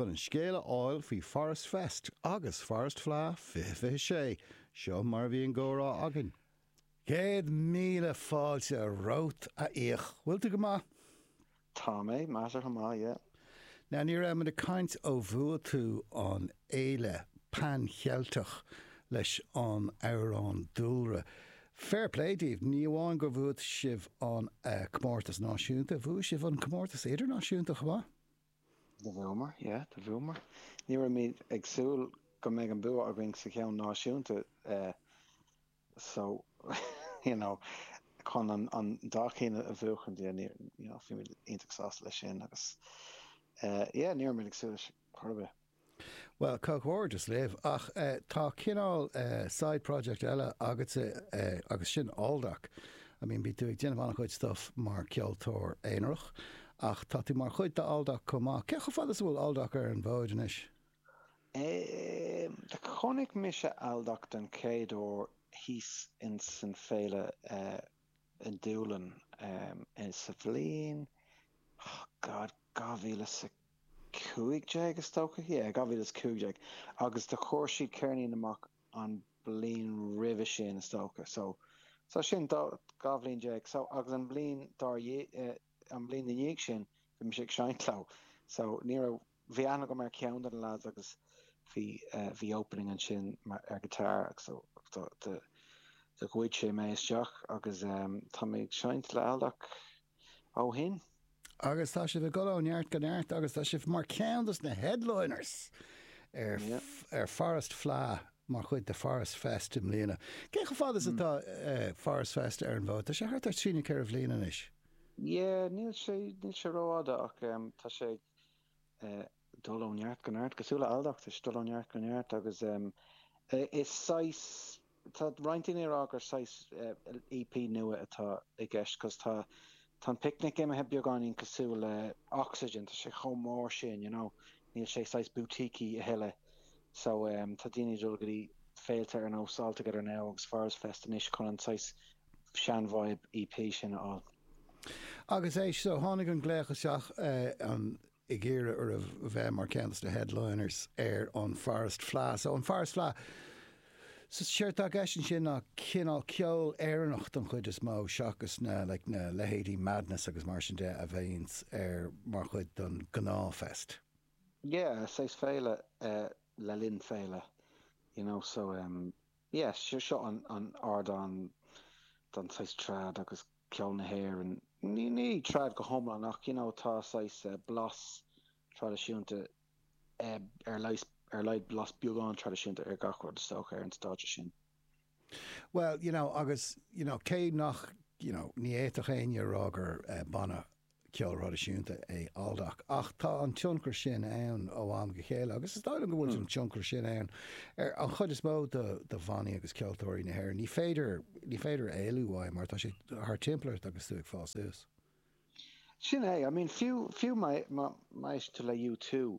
Chun an scéal a fháil faoi Forest Fest agus Forest Fleadh 2026, seo mar a bhí an comhrá againn. Céad míle fáilte romhat, a Fhiach. Bhfuil tú go maith? Tá mé measartha maith, yeah. Now, ní raibh mé ag caint ó bhua tú an Fhéile Pan Cheilteach leis an amhrán Dúlra. Fair play daoibh, ní amháin gur bhuaigh sibh an comórtas náisiúnta, bhuaigh sibh an comórtas idirnáisiúnta chomh maith. Do bhuamar, yeah, do bhuamar. Ní rabhamar ag súil go mbeidh an bua againn sa cheann náisiúnta so, you know, chun an dá cheann a bhuachaint, yeah, ní, you know, bhíomar iontach sásta leis sin agus, yeah, ní rabhamar ag súil leis chor ar bith. Bhuel, comhghairdeas libh, ach tá cineál side project eile agatsa agus sin Aldoc. I mean, bhí tú ag déanamh an-chuid stuif mar ceoltóir aonarach ach tá tú mar chuid d'Aldoc chomh maith. Cé chomh fada is a bhfuil Aldoc ar an bhfód anois? Chonaic mise Aldoc den chéad uair thíos ins an Féile i nDúlainn sa bhliain, oh God, 2000 is 15 is dócha, yeah, 2015 agus do chuir siad ceirnín amach an bliain roimhe sin is dócha so, so sin dó, dhá bhliain déag so agus an bliain ina dhiaidh, an bliain ina dhiaidh sin bhí mise ag seinnt leo so ní raibh, bhí aithne agam ar cheann de na lads agus bhí, bhí opening ansin mar, ar guitar agus so do, do, do ghoid sé mé isteach agus tá mé ag seinnt le Aldoc. ó shin. Agus tá sibh ag dul ó neart go neart agus tá sibh mar ceann dos na headliners ar, ar Forest Fleadh, mar chuid de Forest Fest i mbliana. Cé chomh fada is atá Forest Fest ar an bhfód? Tá sé thart ar trí nó ceithre bhliain anois. Yeah, níl sé, níl sé ró-fhada ach tá sé ag, dul ó neart go neart, cosúil le Aldoc, tá sé ag, dul ó neart go neart agus is saghas, tá roinnt daoine ag rá gur saghas EP nua atá i gceist cos tá an Picnic imithe beagáinín cosúil le Oxegen, tá sé chomh mór sin, you know, níl sé saghas boutiquey a thuilleadh so tá daoine ag dul go dtí féilte ar nós All Together Now agus Forest Fest anois chun an saghas sean-vibe EP sin a fháil. Agus éist, so tháinig an glaoch isteach ag iarraidh oraibh bheith mar ceann de na headliners ar an Forest Fleadh. So an Forest Fleadh, so séard tá i gceist ansin ná cineál ceol Éireannach don chuid is mó seachas na like na leithéidí Madness agus mar sin de a bhíonns ar mar chuid don gnáth fest. Yeah, saghas féile le linn féile, you know, so em. Yes, seo an ardán don saghas trad agus ceol na hÉireann, ní trad go hiomlán ach you know tá saghas blas traidisiúnta ar laghad blas beagán traidisiúnta ar gach rud is dócha ar an stáitse sin. Bhuel you know agus you know cé nach you know ní fhéadfadh éinne a rá gur banna ceol traidisiúnta é Aldoc ach tá an tionchar sin ann ó am go chéile agus is dóigh liom go bhfuil an tionchar sin ann ar an chuid is mó de bhannaí agus ceoltóirí na hÉireann. Ní féidir, ní féidir éalú uaidh mar tá sé thart timpeall ort agus tú ag fás suas. Sin é, I mean fiú, fiú maidir le U2.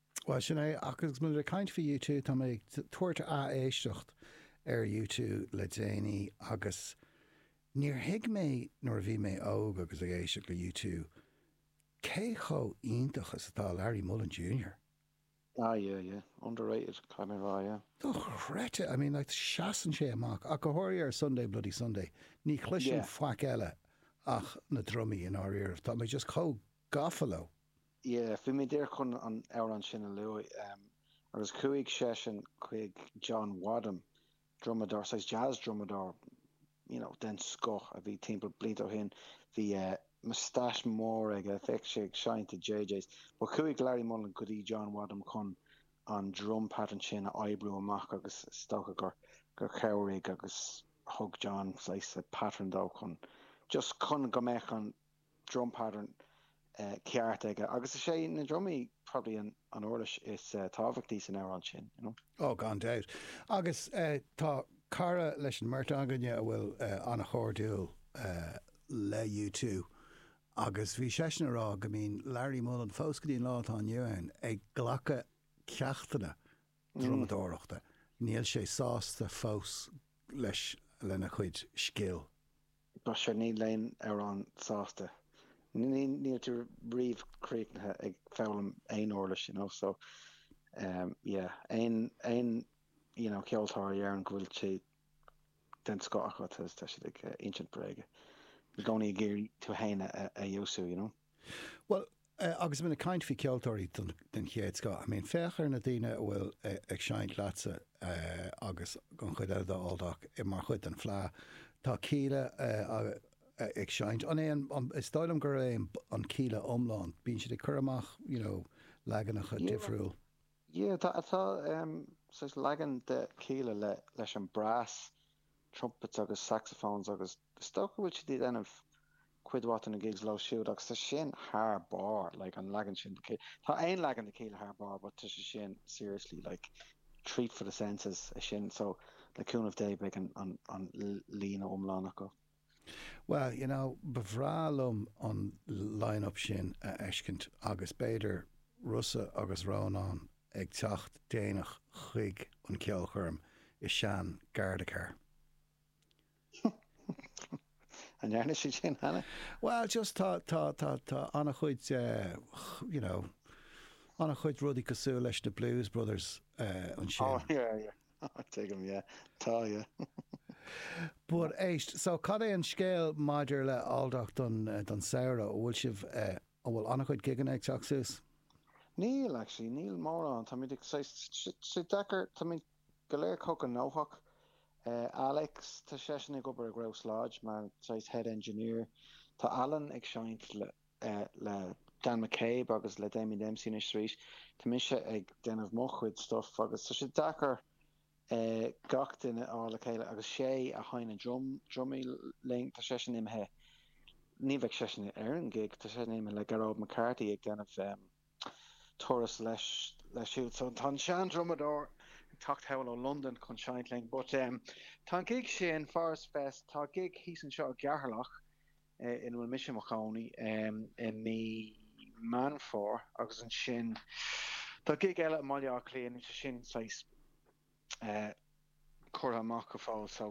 Bhuel, sin é, ach agus muid ag caint faoi U two, tá mé ag tabhairt ath-éisteacht ar U two le déanaí agus níor thuig mé nuair a bhí mé óg agus ag éisteacht le U two cé chomh iontach is atá Larry Mullen Junior. Ah yeah, yeah. Underrated, yeah. Dochreidte! I mean like seasann sé amach, ach go háirithe ar Sunday Bloody Sunday, ní chloisim faic eile ach na drumaí, i ndáiríribh, tá mé just chomh gafa leo. Yeah, bhí mé díreach chun an amhrán sin a lua. Em, agus chuaigh seisean chuig John Wadham, drumadóir, saghas jazz drumadóir, you know, den scoth a bhí timpeall blianta ó shin, bhí, eh, moustache mór aige, bheadh sé ag seinnt i JJ's. But chuaigh Larry Mullen go dtí John Wadham chun an drum pattern sin a oibriú amach agus is dócha gur, gur chabhraigh agus thug John saghas pattern dó chun, just chun go mbeadh an. drum pattern ceart aige agus is é na drumaí probably an uirlis is tábhachtaí san amhrán sin, you know. Oh, gan dabht. Agus tá cara leis an mbeirt againne a bhfuil an-chairdiúil le U two agus bhí seisean ag rá go mbíonn Larry Mullen, fós go dtí an lá atá inniu ann, ag glacadh ceachtanna drumadóireachta, níl sé sásta fós leis, lena chuid scil. But see ní bhíonn tú riamh sásta. Níl tú riamh críochnaithe ag foghlaim aon uirlis, you know, so yeah, aon, aon, you know, ceoltóir a deireann go bhfuil sé den scoth acu, tá siad ag insint bréige. I gcónaí ag iarraidh tú fhéin a fheabhsú, you know. Bhuel, agus muid ag caint faoi cheoltóirí den chéad scoth, I mean, féach ar na daoine a bhfuil ag seinnt leatsa agus an chuid eile de Aldoc mar chuid den Fleadh. Tá Kíla ag seinnt, an é an, is dóigh liom gurb é an Kíla iomlán, bíonn siad ag cur amach, you know, leaganacha difriúla. Yeah, tá, tá saghas leagan de Kíla leis an brass, trumpets agus saxophones agus is dócha go bhfuil siad ag déanamh, cuid mhaith de na gigs leo siúd agus tá sin thar barr, like an leagan sin de Kíla, tá aon leagan de Kíla thar barr but tá sé sin seriously like treat for the senses é sin so le cúnamh Dé beidh an, an, an líne iomlán acu. Well, you know, ba bhreá liom an line-up sin a fheiscint agus b'fhéidir Rossa agus Rónán ag teacht déanach chuig an cheolchoirm i sean-ghardacharr. An ndearna siad sin cheana? Well, just tá, tá, tá, tá an-chuid, you know, an-chuid rudaí cosúil leis na Blues Brothers ansin. Oh, yeah, yeah. Tuigim, yeah. Tá, yeah. But, éist, so cad é an scéal maidir le Aldoc don, don samhradh? An bhfuil sibh, an bhfuil an-chuid gigeanna ag teacht suas? Níl, actually, níl mórán. Táimid ag, saghas, sé deacair, táimid, Go léir cuíosach gnóthach. Alex, Tá seisean ag obair i Grouse Lodge mar saghas head engineer. Tá Alan ag seinnt le Dan McCabe agus le Damien Dempsey anois arís. Tá mise ag déanamh mo chuid stuif agus tá sé deacair gach duine a fháil le chéile agus Shay a sheinneann na drumaí linn, tá seisean imithe, ní bheidh seisean ar an gig, tá seisean imithe le Gearóid McCarthy ag déanamh turas leis siúd so tá an sean-drumadóir ag teacht abhaile ó Londain chun seinnt linn. But em. Tá an gig sin, Forest Fest, tá gig thíos anseo i gCeatharlach ina bhfuil mise i mo chónaí em. i mí Mheán Fómhair agus ansin tá gig eile i mBaile Átha Cliath ach níl sé sin saghas, curtha amach go fóill so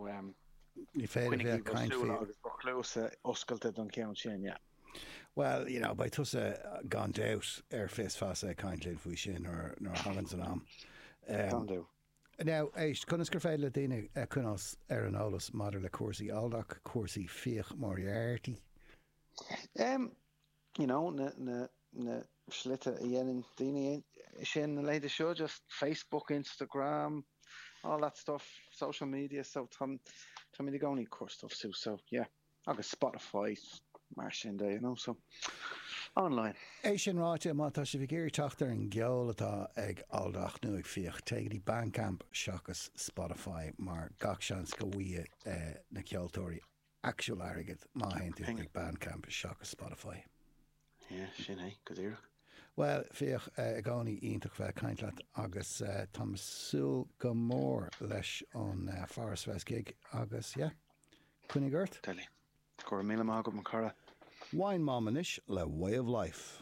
ní féidir a bheith ag caint faoi. Coinnigí bhur súile agus bhur gcluasa oscailte don cheann sin, yeah. Well, you know, beidh tusa gan dabht ar fios feasa ag caint linn faoi sin nuair a thaganns an am. Can do. Now, éist, conas gur féidir le daoine coinneáil ar an eolas maidir le cúrsaí Aldoc, cúrsaí Fiach Moriarty? you know, na, na, na slite a dhéanann daoine sin, na leithéide seo, just Facebook, Instagram, all that stuff, social media, so tá, tá muid i gcónaí ag cur stuff suas, so yeah, agus Spotify, mar sin de, you know, so online. É sin ráite, má tá sibh ag iarraidh teacht ar an gceol atá ag Aldoc nó ag Fiach, téigh go dtí Bandcamp seachas Spotify, mar gach seans go bhfaighidh na ceoltóirí actual airgead má théann tú chuig Bandcamp seachas Spotify. Yeah, sin é go díreach. Bhuel, Fiach, i gcónaí iontach bheith ag caint leat agus táim ag súil go mór leis an Forest Fest gig agus yeah, coinnigh ort. Deadly. Go raibh míle maith agat, mo chara. Wine Mom anois le Way of Life.